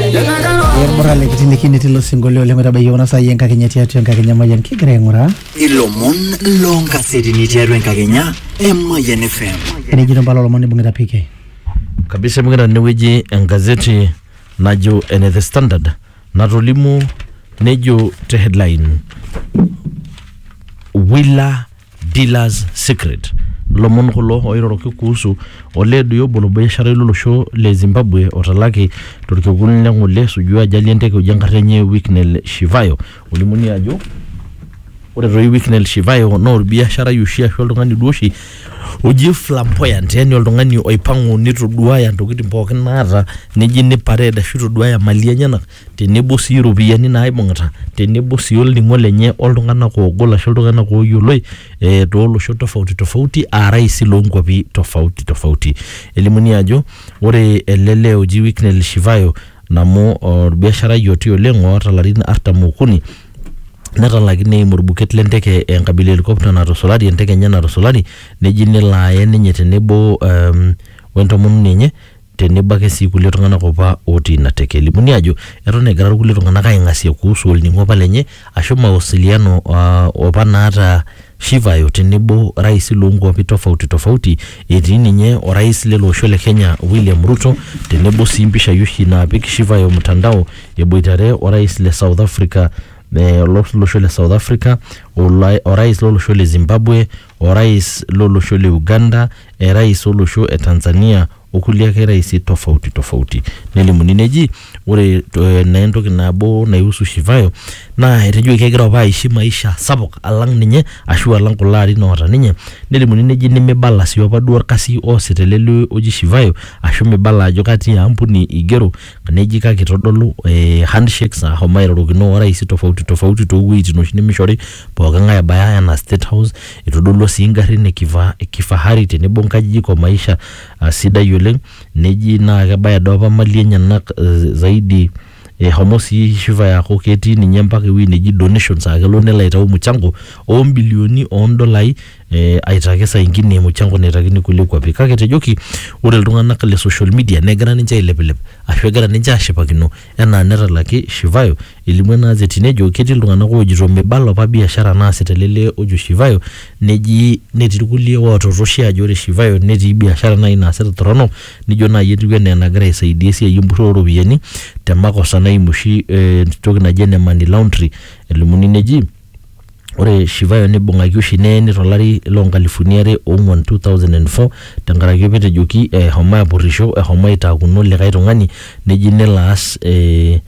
Emurra likitinikini tilo sinkolio oleng oitabayie kuna saai enkakenya tiatua enkakenya mayian kigira aing'uraa ilomon loonkasetini tiatua enkakenya emayian fm enejito mpala olomon nibung'ita PK kabisa ibung'ita tenewueji engazeti najo ene the standard natolimu nejo te headline wila dealers secret lomon kulo oiroroki kuhusu olee doi obo lobiasharai lolosho le Zimbabwe otalaki torkekun le ng'ole esuju ajali enteke oji enkarna enye Wicknell Shivayo olimuni ajo ore toi Wicknell Shivayo naa orbiasharai oshi ashu oltung'ani duo oshi oji flamboyant yani oltung'ani oipang'u nitoduaya ntokitin pookin naata neji ni parade ashu itoduaya imali enyenak tenebo sii iropiyiani naaibung'ita tenebo sii olning'o lenye oltung'anak oogol ashu iltung'anak ooyioloi eh, toolosho tofauti tofauti aa rais loonkuapi tofauti tofauti elimuni ajo ore ele lee oji Wicknell Shivayo namu orbiasharai oti oleng oota ilarin artam okuni netalaki neim orbuket lenteke enkabila e helicopter natusulari enteke enye natusulari neji nelo aye ninye tenebo um, wentomononi enye tenebo ake sii kulie tung'anak opa otii ina teke. Elimuni ajo eton egira irkulie tung'anak aing'asia kuhusu olning'o opa lenye ashu mawasiliano uh, opa naata Shivayo tenebo rais loonkuapi tofauti tofauti etii ninye orais lele osho le Kenya William Ruto tenebo sii impishai oshi naapik Shivayo mtandao eboitare orais le South Africa eh, olosho le South Africa, olai- orais lolosho le Zimbabwe orais lo losho le Uganda, erais olosho e Tanzania o kulie ake raisi tofauti tofauti. Nelimuni neji ore eh, naa entoki nabo naihusu Shivayo naa etejoki kegira apa aishi maisha sapuk alang ninye ashu alang kulo arin oota ninye. Nelimuni neji nimibala sii opa duo orkasi oosita ele lee oji Shivayo ashu mibala ajo katia ampuni igero neji kake itodolu eh, handshakes ahomo airorokino orais tofauti tofauti toowueitin oshi nemishori pooki ng'ae ebaya enaa state house itodolua sii ingarrin e kifa- e kifahari tenebo nkajijik o maisha ah, sidai oleng neji naa kebaya doi apa mali enyenak eh, zaidi ehomo sii Shiva aaku ketii ninye mpaka ewueji neji donations akelo nelo aitau mchango ombilioni ondolai eh, aitaki saa ingine mchango naitakini kulie kuapi kake etejoki ore iltung'anak le social media negira ninche ailepilep ashu egira ninche ashipakino enaa netalaki Shivayo elimu ena azeti nejo ketii iltung'anak oojito mibala apa biashara naasita ele lee ojo Shivayo neji netii irkulie ootorroshie ajo ore Shivayo netii biashara naaji naasita torrono nijo naaji etiu enaa enagira aisaidia esiai empurrore ooropiyiani te makosa naimu oshi eh, entoki naji ene money laundry elimuni neji Ore Shivayo neibung'aki oshi neeni to lari loo nkalifuni are o ong'uan, 2004, tenkaraki apa etejoki eshomo apurrisho, eshomo aitaakuno likae tung'ani neji nelo aas ee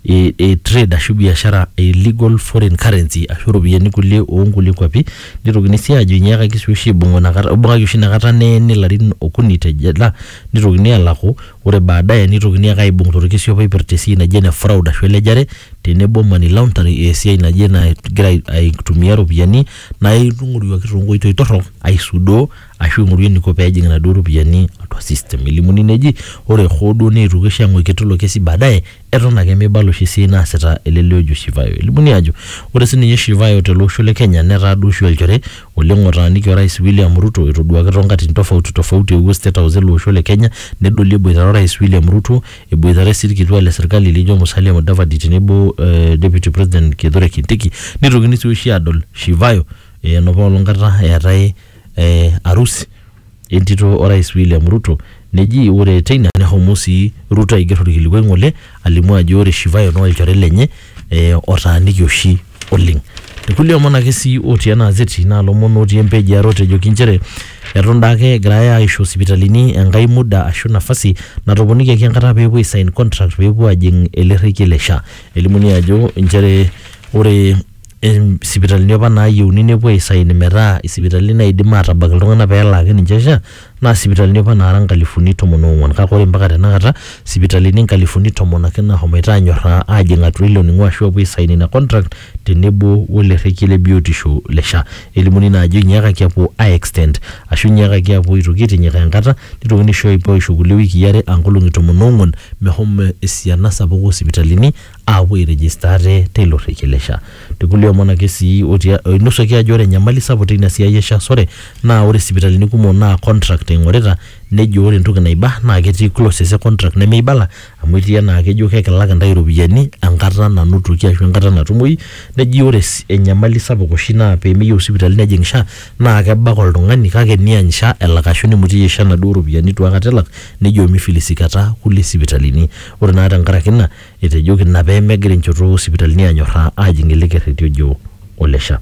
ee trade ashu biashara e illegal foreign currency ashu iropiyiani kulie oo nkulie kuapi. Nitokini sii aajo inyiakaki sii oshi aibung'u ina kata, ibung'aki oshi ina kata neeni ilarin okuni te jela nitokini aalaku Ore baadaye neitokini ake aaibung torkisiop oipirta esiai naji ene fraud ashu elejare tenebo money laundering esiai naji enagira aitumia iropiyiani naa ing'oruaki toonkoitoi torrok aisudoo ashu ing'oru eniko peejing inaduo ropiyiani atua system elimuni neji ore hoo duo neetuoki oshi ang'uiki tilo kesi baadaye eton ake meibala oshi esiai naasita ele lee ojo Shivayo. Elimuni ajo ore sininye Shivayo tele osho le Kenya netaa duo oshi olchore oleng otaaniki orais William Ruto etoduaki toonkatitin tofauti tofauti eewuo state house ele osho le Kenya nedoli eboitare orais William Ruto, eboitare sii ilkituak le serkali lijo Musalia Mudavadi tenebo Deputy President Kithure Kindiki neitokini sii oshi aadol Shivayo enopa olong kata eetae arusi entito Orais William Ruto neji ore teina nehomo sii Ruto aiger olkilikuai ng'ole alimu ajo ore Shivayo naa olchore lenye e, otaaniki oshi oleng. Ilkulie omon ake sii otii ena azeti naa lomon otii empeji are otejoki nchere eton daake egirai aisho sipitalini enkae muda ashu nafasi natoponikiaki enkata pee epuo aisain contract pee epuo ajing ele rrekie le SHA. Elimuni ajo inchere ore em, sipitalini apa naayieuni nepuo aisain metaa isipitalini naidim aatabak iltung'anak pee elaaki ninche SHA naa sipitalini apa naara inkalifuni tomon oong'wan kake ore mpaka tenakata sipitalini inkalifuni tomon ake naahomoito aanyorraa aajing atua ilo ning'o ashu apuo aisain ina contract tenebo wele rrekie le biotisho le SHA elimuni naa ajo inyiakaki apuo ae extend ashu inyiakaki apuo aitoki aitinyikaa enkata nitokini aisho aisho kulie wikii are aa nkolong'i tomon oong'wan mehomo esiana sapuk osipitalini. aapuo airegister ate teilo rrekie le SHA. Te kulie omon ake sii otia, oinosuaki ajo ore enyamali sapuk teina siai e SHA sore naa ore sipitalini kumok naa contract eing'orita nejo ore entoki naiba naa ketii clauses e contract nemeibala amu etii enaa kejo kekilak intae iropiyiani enkata nanotoki ashu enkata natumoyu neji ore enyamali sapuk oshi naa pemeyieu sipitali nejing SHA naa kebak oltung'ani kake eniany SHA elak ashu nimutieyie SHA inaduo ropiyiani itu akata elak Nejo meifilisiikata kulie sipitalini. Ore naa tenkaraki ina, etejoki ina pee megira enchoto oo sipitalini aanyorraa aajing ele kerreti ojo ole SHA.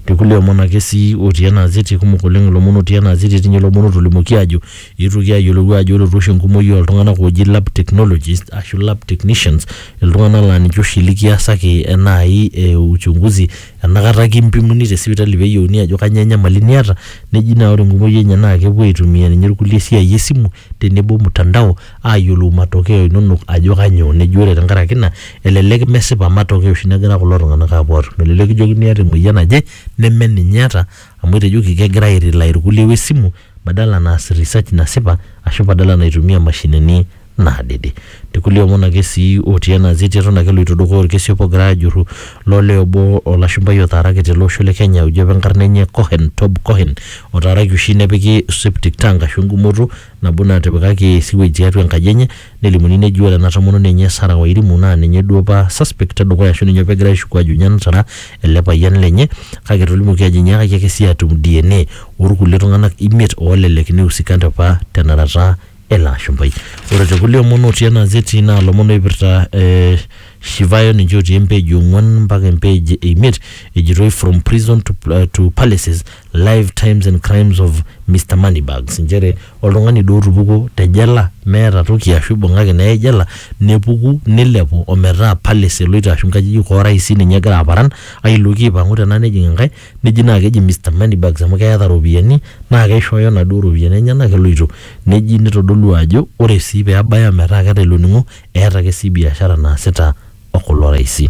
Te kulie omon ake sii otii ena azeti, kumok oleng ilomon otii ena azeti, etii ninye lomon ootolimuoki aajo eetuoki aayiolou aajo ore oshi enkumoi oo ltung'anak ooji lab technologists ashu lab technicians iltung'anak laa ninche oshi likiasaki naai uchunguzi enakata kimpimuni te sipitali pee eyieuni ajo kanyoo enyamali niata neji naa ore enkumoi enye naa kepuo aitumia ninye irkulie esiai esimu tenebo mtandao aayiolou matokeo inonok ajo kanyoo neji ore tenkaraki ina elelek mesipa matokeo oshi negira kulo tung'anak aapuo aatum elelek kijokini iyata emoyian naje neme ninye iyata amu etejoki kegira ae rely irkulie wesimu badala naas research nasipa ashu badala naitumia imashinini. naadede. Te kulie omon ake sii otii ena zeti eton ake eloito dukuya olkesi obo ogirai aajurru lo lee obo olashumpai otaaraki tele osho le Kenya oji apa enkarna enye Cohen, Tob Cohen otaaraki oshi nepiki septic tank ashu engumoto nabo natipikaki sewage tiatua enkaji enye nelimuni neji ore ena tomononi enye Sarah Wairimu naa ninye duo apa suspect e dukuya ashu ninye opa egirai aishuku aajo ninye natara ele payian lenye kake etolimuoki aajo enyaakaki ake sii aatum DNA oo lkulie tung'anak imiet oolelek neiusikante apa tenarata ele ashumpai. Ore te kulie omon otii ena zeti naa lomon oipirta eh, Shivayo ninche otii empeji ong'uan mpaka empeji e imiet ejitoi from prison to, uh, to palaces live times and crimes of Mr Moneybags inchere oltung'ani duo otupukuo te jela meeta toki ashu ibung'aki neyai jela nepuku nilepu ometaa palace eloito ashu inkajijik orais ninye egira aparan ailoki aipang'u tena nejing enkae neji naa keji Mr Moneybags amu keeta iropiyiani naa keishooyo inaduo ropiyiani enyenak eloito neji nitodolu ajo ore sii peebaya metaa keeta ilo ning'o eeta ake sii biashara naasita okulo raisi.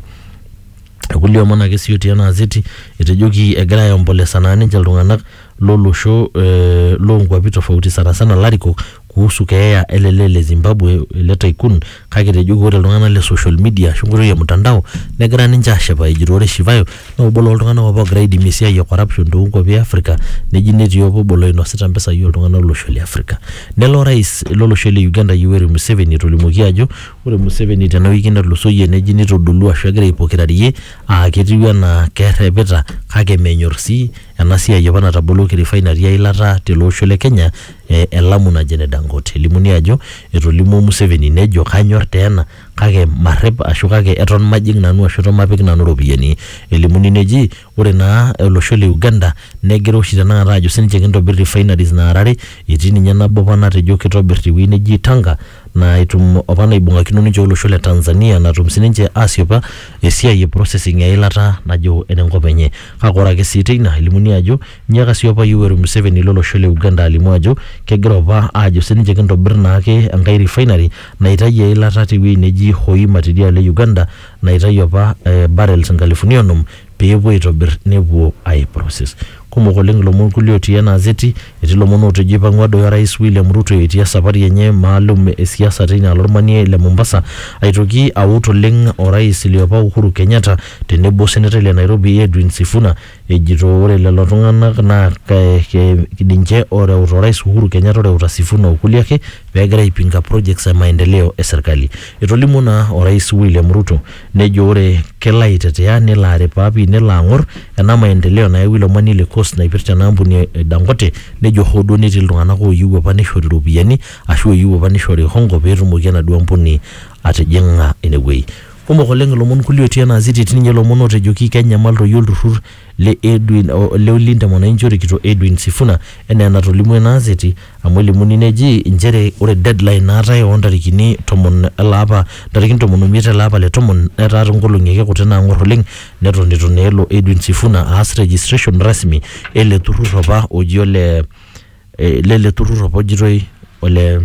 Irkulie omon ake sii otii ena azeti etejoki egira aiompolesa naa ninche iltung'anak lolosho eh, lonkuapi tofauti sana sana ilarikok kuhusu keeya ele lee le Zimbabwe ele tycoon kake etejoki ore iltung'anak le social media ashu enkoitoi e mtandao negira ninche aashipa ejito ore Shivayo naa obo loltung'anak apa oogira aidimie esiai e corruption toonkuapi e Africa neji netii apa obo loinosita impisai ooltung'anak lolosho le Africa. Nelo orais lolosho le Uganda Yoweri Museveni etolimuoki ajo ore Museveni tena wiki natulusoyie neji neitodolua ashu egira aipokirarie aa ketiu enaa kerrepita kake menyor sii ena siai apa nataboloki refinery eilata tele osho le Kenya eh, e Lamu naji ene Dangote. Elimuni ajo etolimuo Museveni nejo kanyor taa ena kake marrep ashu kake eton majing nanu ashu eton mapik nanu iropiyiani. Elimuni neji ore naa olosho le Uganda negira oshi tenakata ajo sininche kintobir refineries naara are etii ninye nabo apa natejo kitobir tewuei neji Tanga naa etum opa naibung'akino ninche olosho le Tanzania natum sininche asiopa esiai e processing eilata najo enenkop enye. Kake ore ake sii teina elimuni ajo inyiaka sii opa Yoweri Museveni lo losho le Uganda alimu ajo kegira opa aajo sininche kintobir naake enkae refinery naitayu eilata tewueji neji Hoima tidialo e Uganda naitayu opa barrels inkalifuni onom pee epuo aitobir nepuo ai process. Kumok oleng ilomon kulie otii ena azeti, etii ilomon ootejo eipang'ua doi orais William Ruto etii esapari enye maalum e siasa teina alo olmanie le Mombasa aitoki aut oleng orais liopa Uhuru Kenyatta tenebo osenetai le Nairobi Edwin Sifuna ejito ore lelo tung'anak naa ninche ooreuta orais Uhuru Kenyatta oreuta Sifuna o kulie ake pee egira aipinga projects e maendeleo e serkali. Etolimuo naa orais William Ruto Nejo ore kelo aitetea nelo aripaa pii nelo ang'or ena maendeleo nayawua ilo omani le coast naipirta ena ampuni e Dangote nejo hoo duo netii iltung'anak ooyieu apa neishori iropiyiani ashu ooyieu apa neishori hongo peetumoki enaduo ampuni atijing'a inewuei. Kumok oleng ilomon kulie otii ena aziti etii ninye ilomon ootejoki kenyamal toi olturrur le Edwin o le Olinda Mwananchi orikito Edwin Sifuna enaa enatolimwo ina aseti amu elimuni neji inchere ore deadline naatae oo ntarikini tomon ele apa ntarikin tomon omiet ele apa le tomon netaa toonkolong'i ake kuti naang'or oleng neton eitu naa elo Edwin Sifuna aas registration rasmi ele turrur apa oji ole lele turrur apa ojitoi ole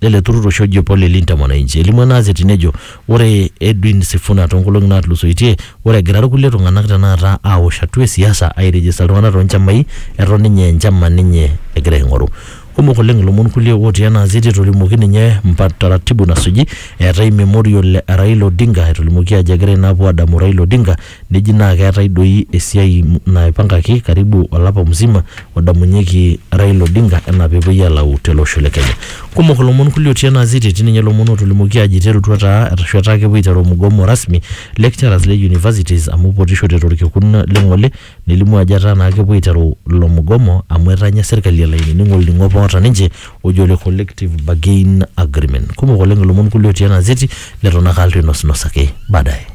lele turrur oshi oji opo le Linda Mwananchi. Elimu ena azeti nejo ore Edwin Sifuna toonkolong'i naatulusoitie ore egira irkulie tung'anak tenakata aawosh hatua e siasa airejista iltung'anak too nchamai eton ninye enchama ninye egira aing'oru. Kumok oleng ilomon kulie ootii ena azeti etolimuoki ninye mpa taratibu nasuji eetae Memorial e Raila Odinga etolimuoki ajo egira ina apuo aadamu Raila Odinga Neji naa keetae doi esiai naipankaki karibu olapa musima odamunyeki Raila Odinga enaa pepuoi alau tele osho le Kenya. Kumok ilomon kulie otii ena azeti etii ninye ilomon otolimuoki ajo iterutua taa arashu etaa kepuo aiteru mugomo rasmi lecturers le universities amu ipotishote torkekun le ng'ole nelimu ajo etaa naa kepuo aiteru ilo mugomo amu etanya serkali elo ainining olning'o apa oota ninche oji ole collective bargain agreement. Kumok oleng ilomon kulie otii ena azeti leton ake alo ainosnos ake baadaye.